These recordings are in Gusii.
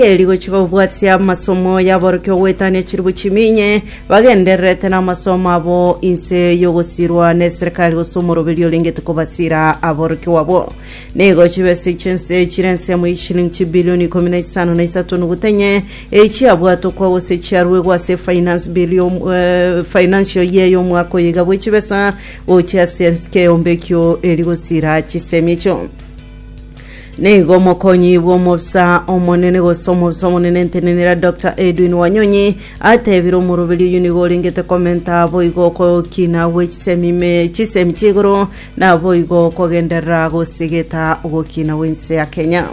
Eri gochika gobwatia amasomo y'aborokia ogoetania chilifu chimia inye, bagendererete namasomo abo inse y'ogosirwa neserikali gose omoroberio orengete kobasira aborokigwa abwo. Nigo chibesa chi'ense chire ensemo y'eshilingi chibilioni ikomi na isano na isato nogutwa inye, echiabwatokwa gose chiaruegwa ase efinance bill y'om eh, financial year y'omwaka oyo iga bw'echibesa gochia ase ensike eombe ekio eri gosira chisemi echio. Nigo omokonyi bw'omobisa omonene gose omobisa omonene entenenera Dr Edwin Wanyonyi atebire omoroberi oyo nigo orengete komenta boigo okokina gwe chisemi me- chisemi chi'igoro na boigo kogenderera gosigeta ogokina gw'ense ya Kenya.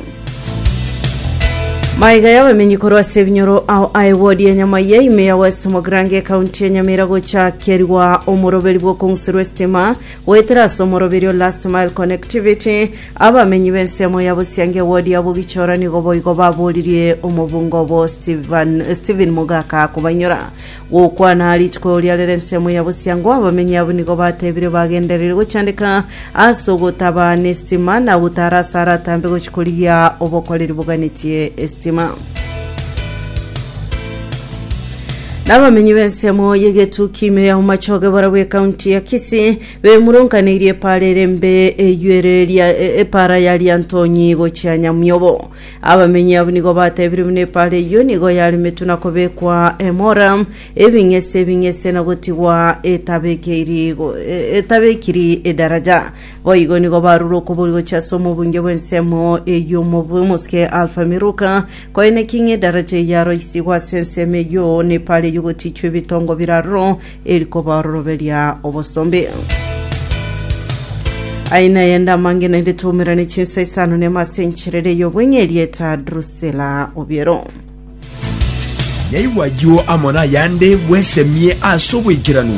Maiga y'abamenyi korwa ase ebinyoro ao aye wodi ya Nyamaia ime ya West Mogrange ekaunti ya Nyamira gochakerigwa omoroberi bw'okong'usirwa estima Goetera ase omoroberio Last Mile Connectivity, abamenyi b'ensemo ya Bosiange ewodi ya Bogichora nigo boigo baboririe omobunga obo Steven, Stephen Mogaka kobanyora. Gokwana rituko eria rere ensemo ya Bosiango, abamenyi abwo nigo batebire bagendereri gochandeka ase ogotaba nestima na gotara ase aratambe gochi korigia obokoreri boganetie estima. N'abamenyi b'ensemo y'egetu kimio ya Umachoge barabwo ekaunti ya Kisii bemurunkaneirie epara erembe eywo ere ria e- epara ya Riantonyi gochia Nyamiobo. Abamenyi abwo nigo batebire buna epara eywo nigo yaremetwe na kobekwa emora, ebing'ese ebing'ese na gotigwa etabekiri go- e- etabekiri edaraja. Boigo nigo barure okobori gochia ase omobunge bw'ensemo eyio omobui mosike Alfa Miruka, koine ki ng'edaraja eyio aro isigwe ase ensemo eyio nepara eyio gotichwa ebitongo bire aroro eri kobaororoberia obosombe. Aina yende amange naende toumera ne chinsa isano nema ase enchera ere ey'obweng'e erieta Drusila Obiero. Naigwa ayio amo nayande bwesemie ase oboikeranu.